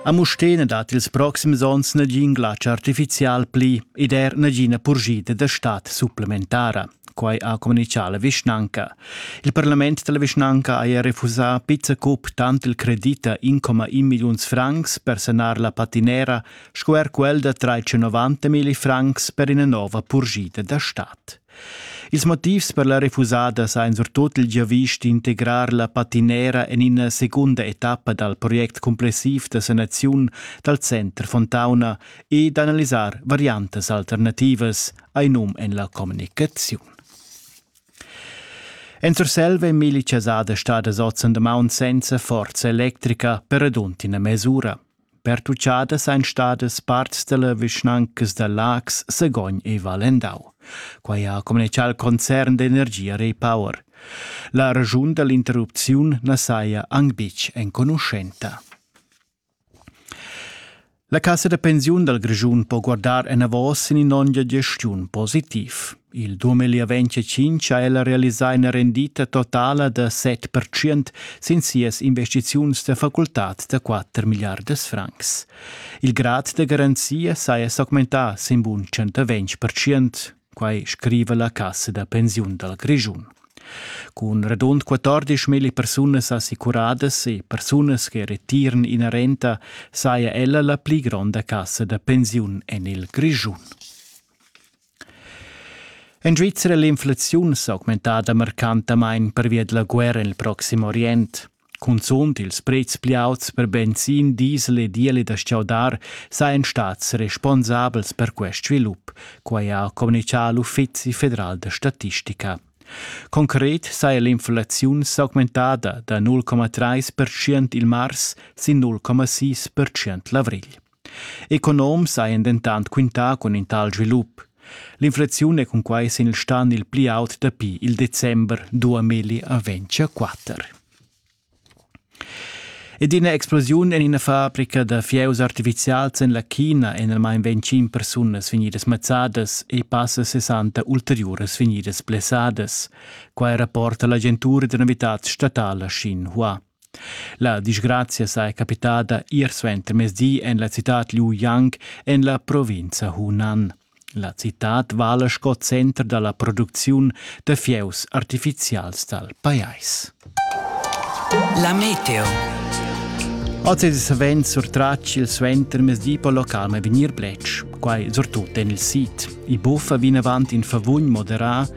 A Mustér na dat ils proxims onns nagin glatsch artifizial pli ed er nagina purschida da stat supplementara. Quai ha communitgà la vischnanca. Il parlament da la vischnanca haja refusà pizza cup tant il credit da 1,1 milliuns francs per sanar la patinera sco er quel da 390 milli francs per ina nova purschida da stat. Ils motivs per la refusada s'ha in surtut il giavisch d'integrar la patinera en ina secunda etappa dal project cumplessiv da sanaziun dal Center Fontauna e d'analisar variantas alternativas, hai num en la communicaziun. En Surselva è Meli Chasada stada oz on damaun senza forza electrica per radund ina mes'ura. Pertuchadas ein stadas parts dalla vischnancas da Laax, Sagogn e Valendau. Quei ha communicau al concern d'energia Repower. La raschun dall'interrupziun na saja anc betg enconuschenta. La cassa da pensiun dal Grischun po guardar enavos sin in'onda gestiun positiv. Il dumegl avent tschintg ha ella realisà ina rendita totala da set pertschient sin sias investiziuns da facultad da quatter milliardas francs. Il grad da garanzia saja s'augmentà sin bun 120 pertschient, quai scriva la cassa da pensiun dal Grischun. Cun radund 14 mil persunas assicuradas e persunas che retiran ina renta saja ella la pli gronda cassa da pensiun en il Grischun. En Svizra è l'inflaziun s'augmentada marcantamain pervia da la guerra en il Proxim Orient. Cunzunt ils prezs pli auts per benzin, diesel e diesel da stgaudar sajan stads responsabels per quest svilup, quai ha communitgà l'Uffizi federal da statistica. Concret saja l'inflaziun s'augmentada da 0,3% il mars sin 0,6% l'avrigl. Economs hajan dentant quintà cun in tal svilup. L'inflaziun è cunquai sin il stan il pli aut dapi il december 2024. Ed ina explosiun en ina fabrica da fieus artifizials en la China èn almain 25 persunas vegnidas mazzadas e passa 60 ulteriuras vegnidas blessadas. Quai rapporta l'agentura da novitads statala Xinhua. La disgrazia saja capitada ir suentermezdi en la citad Liu Yang en la provinza Hunan. La citad vala sco center da la producziun da fieus artifizials dal pajais. La meteo. Oz è savens surtratg il suentermezdi per localme vegnir plec, quai surtut en il sit. I buffa vinavant in favugn moderà